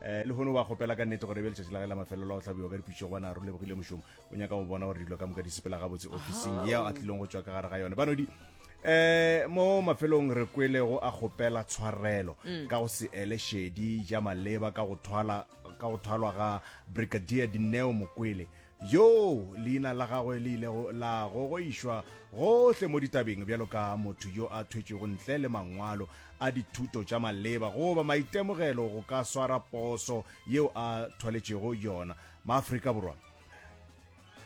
Eh, lehono wa kgopela ka nnete gore e be letšatši la ge la mafelelo a go hlabiwa ka dipitšego bona re lebogile mošomo o nyaka go bona gore dilo ka moka di sepela gabotse officing yeo a tlileng go tswa ka gare ga yone banodi eh mo mafelong re kwele go a kgopela tshwarelo mm. ka go se ele shedi ja maleba ka go thwala ka go thwalwa ga brigadier dineo mokwele yoo leina la gagwe le ilego la gogoišwa gohle mo ditabeng bjalo ka motho yo a thwetšwego ntle le mangwalo a dithuto tša maleba goba maitemogelo go ka swara poso yeo a thwaletšego yona maafrika borwa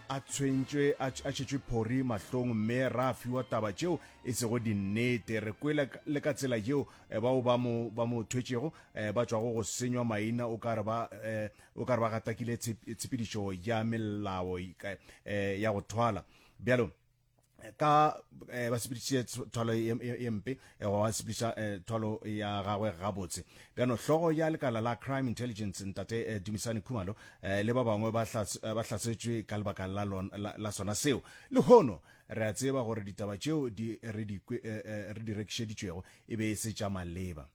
a tshwentšwe a tšhetšwe phori mahlong mme ra fiwa taba tšeo e sego dinnete re kwele le ka tsela yeo eh, bao ba mo ba mo thwetšego eh, ba tšwago go senywa maina o ka re ba eh, O ka re ba gatakile tshepedišo ya melao ya go thwala. Bjalo, ka eh, ba sepediše thwalo ye mpe eh, wa sepediša eh, thwalo ya gagwe gabotse bjano hlogo ya lekala la crime intelligence ntate eh, dumisane khumalo eh, le ba bangwe ba eh, hlasetšwe ka lebaka la, la, la sona seo le hono re a tseba gore ditaba tšeo di, re, di, eh, eh, re di rekišeditšwego e be e se tša maleba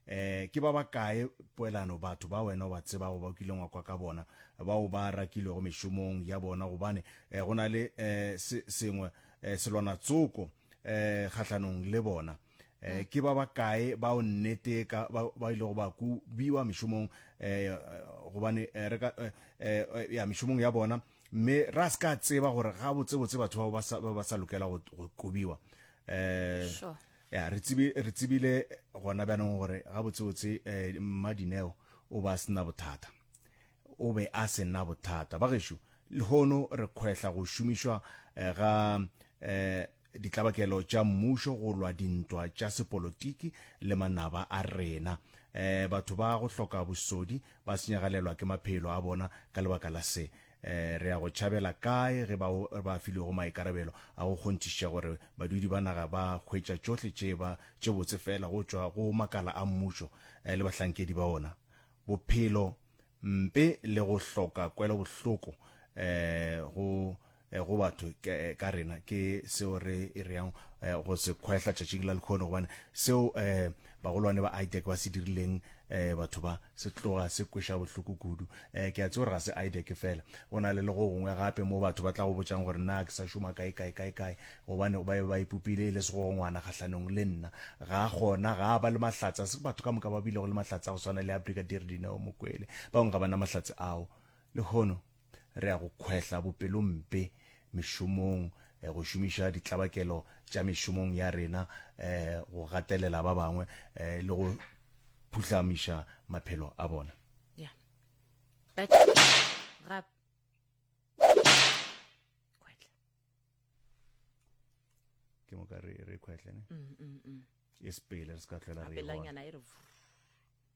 eh ke ba ba kae poelano batho ba wena o ba tseba go ba o kileng wa kwa ka bona bao ba rakilego mešomong ya bona gobane eh, go na le eh, sengwe eh, selwana tsoko eh, kgahlanong le bona eh, ke ba ba kae ba o nnete ka ba ile go ba ku biwa mešomong eh, gobane eh, re ka eh, eh, eh ya mešomong ya bona mme ra se ka tseba gore ga botsebotse batho ba ba sa lokela go kubiwa eh sure. ya re tsibi re tsibile gona ba neng gore ga botse botse eh, mmadineo o ba sena bothata o be a sena bothata ba gešo le hono re khwehla go šomišwa eh, ga eh ditlabakelo tša mmušo go lwa dintwa tša sepolotiki le manaba a rena eh batho ba go hloka bosodi ba senyagalelwa ke maphelo a bona ka lebaka la se Re ya go tšhabela kae ge bao ba filwego maikarabelo a go kgonthišiša gore badudi ba naga ba hwetša tšohle tše ba tše botse feela go tšwa go makala a mmušo le bahlankedi ba ona? Bophelo, mpe le go hloka kwelobohloko go go batho ka rena ke seo re e reang go se kgwehla tšatšing la lekhono, gobane seo Bagolwane ba Aideck ba se dirileng um batho ba? Se tloga se kweša bohloko kudu. Um ke a tse gore ga se Aideck fela, go na le le go gongwe gape moo batho ba tla go botšang gore na ke sa šoma kae kae kae kae, gobane ba be ba ipopile e le segogongwana kgahlanong le nna. Ga gona, ga a ba le mahlatse, ga se batho ka moka ba bilego le mahlatse a go swana le a Brigadier Dineo Mokwele. Bangwe ga ba na mahlatse ao lehono. Re a go kgwehla bopelompe mešomong, go šomiša ditlabakelo tša mešomong ya rena, go gatelela ba bangwe le go phuhlamiša maphelo a bona. Ke moka re kgwehle ne? Mm, mm, mm. E sepele re se ka tlhwela re e bona.